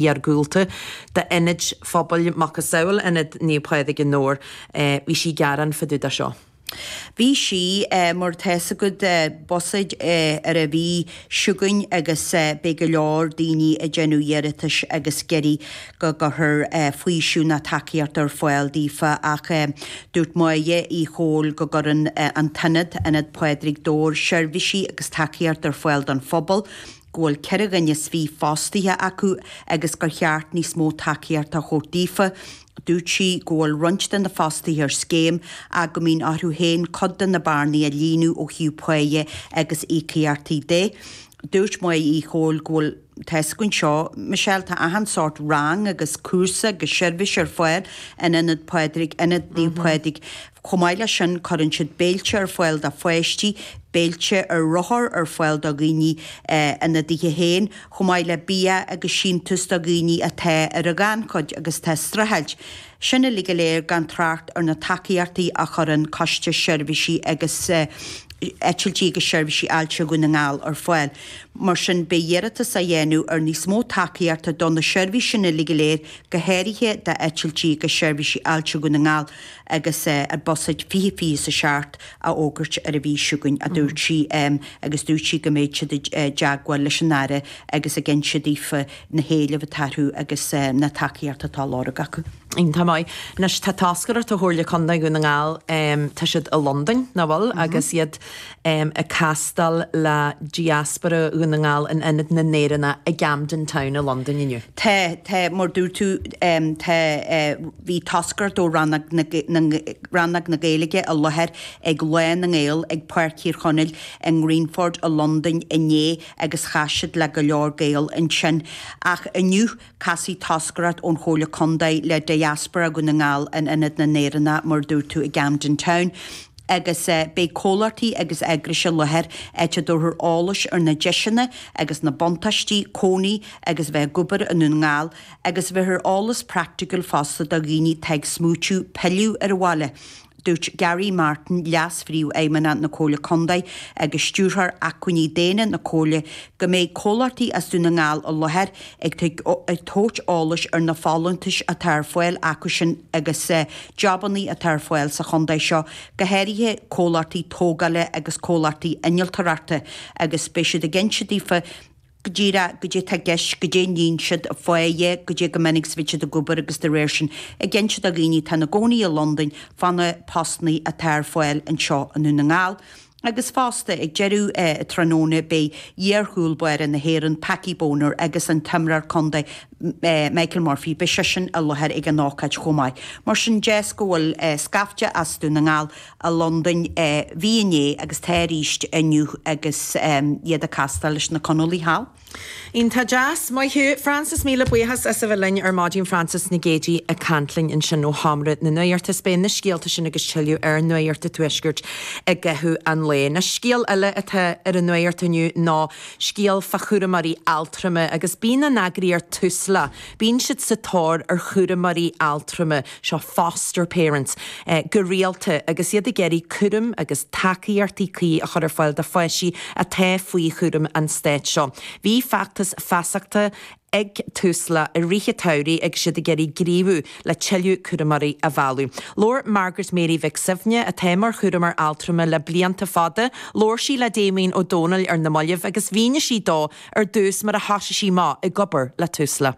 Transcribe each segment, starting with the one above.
iargúlta do ionaid phobail macasamhail Ionad Naomh Pádraig i nDobhar. Bhí sí ag gearán fá dtaobh de seo. Bhí sí mar tá fhios agat buiséad ar an mhí seo chugainn agus beidh go leor daoine ag déanamh iarratais agus ag iarraidh go gcuirfear faoiseamh ná tacaíocht ar fáil daofa ach dúirt Máire Uí Chomhaill go gcuireann an t-ionad, Ionad Pádraig Dobhair, seirbhísí agus tacaíocht ar fáil don phobal. go bhfuil ceithre dhuine is fiche fostaithe acu agus gur cheart níos mó tacaíochta a thabhairt daofa. Dúirt sí go bhfuil roinnt de na fostaithe ar scéim ach go mbíonn orthu féin cuid de na bearnaí a líonadh ó thaobh páighe agus íocaíochtaí de. Dúirt Máire Uí Chomhaill go bhfuil Tá fhios againn seo, Michelle, tá achan sórt rang agus cúrsa agus seirbhís ar fáil in Ionad Phádraig, Ionad Naomh Pádraig. Chomh maith le sin, cuireann siad béilte ar fáil do pháistí, béilte ar rothar ar fáil do dhaoine ina dtithe féin, chomh maith le bia agus síntiús do dhaoine atá ar an ghannchuid agus atá ag streachailt. Sin uilig go léir gan trácht ar na tacaíochtaí a chuireann Coiste Seirbhísí agus Eitiltí agus Seirbhísí Ailse Dhún na nGall ar fáil. Mar sin, beidh iarratas á dhéanamh ar níos mó tacaíochta do na seirbhísí sin uilig go léir, go háirithe d'Eitiltí agus Seirbhísí Ailse Dhún na nGall, agus buiséad fiche fiche is a seacht á fhógairt ar an mhí seo chugainn, a dúirt sí, agus dúirt sí go mbeidh siad i dteagmháil leis an Aire agus ag inse daofa na héilimh atá acu agus na tacaíocht atá á lorg acu. Iontach maith. Anois tá toscaireacht ó Chomhairle Contae Dhún na nGall, tá siad i Londain, nach bhfuil, agus iad ag castáil le diaspóra Dhún na nGall in Ionad na nÉireannach i gCamden Town i Londain inniu. Tá, tá, mar dúirt tú, tá, bhí toscaireacht ó Rannóg na, Rannóg na Gaeilge i láthair ag Lá na nGael ag Páirc Thír Chonaill i nGreenford i Londain inné agus chas siad le go leor Gael ansin. Ach inniu, Casfaidh toscaireacht ón Chomhairle Contae le diaspóra Dhún na nGall in Ionad na nÉireannach mar a dúirt tú i gCamden Town agus beidh comhlachtaí agus eagrais i láthair áit a dtabharfar eolas ar na deiseanna agus na buntáistí cónaí agus a bheith ag obair i nDún na nGall agus bhéarfar eolas praiticiúil fosta do dhaoine atá ag smaoitiú pilleadh ar an bhaile. Dúirt Garry Martin, Leas-Phríomhfheidhmeannach na Comhairle Contae agus Stiúrthóir Acmhainní Daonna na Comhairle, go mbeidh comhlachtaí as Dún na nGall i láthair ag tabhairt eolais ar na folúntais atá ar fáil acusan agus jabannaí atá ar fáil sa chontae seo, go háirithe comhlachtaí tógála agus comhlachtaí innealtóireachta agus beidh siad ag insint go díreach goidé tá i gceist, goidé a níonn siad, fá choinne, goidé chomh minic 's a bíonn siad ag obair agus de réir sin ag inse do dhaoine atá ina gcónaí i Londain fá na postannaí atá ar fáil anseo i nDún na nGall. Agus fosta, ag deireadh tráthnóna beidh iarchúl báire na hÉireann, Packie Bonner agus an t-imreoir contae Michael Murphy, beidh seisean i láthair ag an ócáid chomh maith. Mar sin, deis go bhfuil scaifte as Dún na nGall i Londain. Bhí inné agus tá arís inniu agus iad ag castáil leis na Conallaigh thall. Iontach deas. Maith thú. Frances, Míle buíochas as a bheith linn ar maidin. Frances Nic Éadaigh ag caint linn ansin ó Sheomra na Nuachta. Is beidh na scéalta sin agus tuilleadh ar Nuacht an Tuaiscirt i gcaitheamh an lae. Anois scéal eile atá ar an nuacht inniu ná scéal fá chúramóirí altrama agus bíonn an eagraíocht Tusla, bíonn siad sa tóir ar chúramóirí altrama. seo, foster parents, go rialta agus iad ag iarraidh cúram agus tacaíochtaí cuí a chur ar fáil do pháistí atá faoi chúram an stáit. So, bhí feachtas feasachta ag Tusla i rith an tsamhraidh agus iad ag iarraidh gníomhú le tuilleadh cúramóirí a mhealladh. Labhair Margaret Mary Mhic Suibhne, atá mar chúramóir altrama le blianta fada, labhair sí le Damien Ó Dónaill ar na mallaibh agus mhínigh sí dó ar dtús mar a thosaigh sí amach ag obair le Tusla.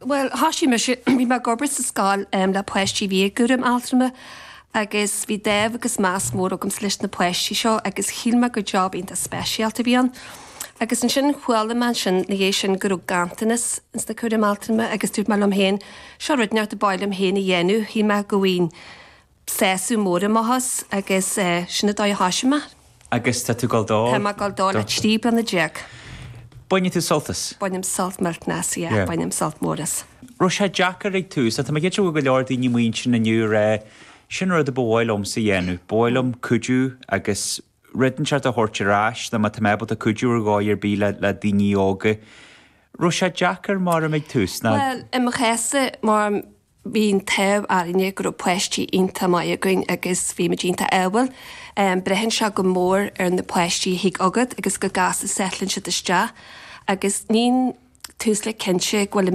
Bhuel, thoisigh mise, bhí mé ag obair sa scoil le páistí a bhí i gcúram altrama agus bhí dáimh agus meas mór agamsa leis na páistí seo agus shíl mé gur job iontach speisialta a bhí ann. Agus ansin chuala mé ansin ina dhiaidh sin go raibh ganntanas ins na cúraim altrama agus dúirt mé liom féin, seo rud inteacht a ba mhaith liom féin a dhéanamh, shíl mé go seasamh mór i mo thus agus sin an dóigh a thoisigh mé. Agus tá tú ag dul dó? Táim ag dul dó le trí bliana déag. Baineann tú sult as? Bainim sult cinnte, yeah, bainim sult mór as. raibh sé deacair ag an tús? Tá mé cinnte go bhfuil go leor daoine ag smaointiú inniu ag rá sin an rud a ba mhaith liomsa a dhéanamh. Ba mhaith liom cuidiú agus rud inteacht a thabhairt ar ais nó má tá mé ábalta cuidiú ar dhóigh ar bith le daoine óga. Raibh sé deacair, abraimis, ag an tús? Bhuel, i mo chás-sa, Máirim, bhí an t-ádh orainne go raibh páistí iontach maith againn agus bhí muid iontach ádhúil. Braitheann sé go mór ar na páistí a thig chugat agus go gasta settleann siad isteach agus níonn tú suas cinnte go bhfuil an.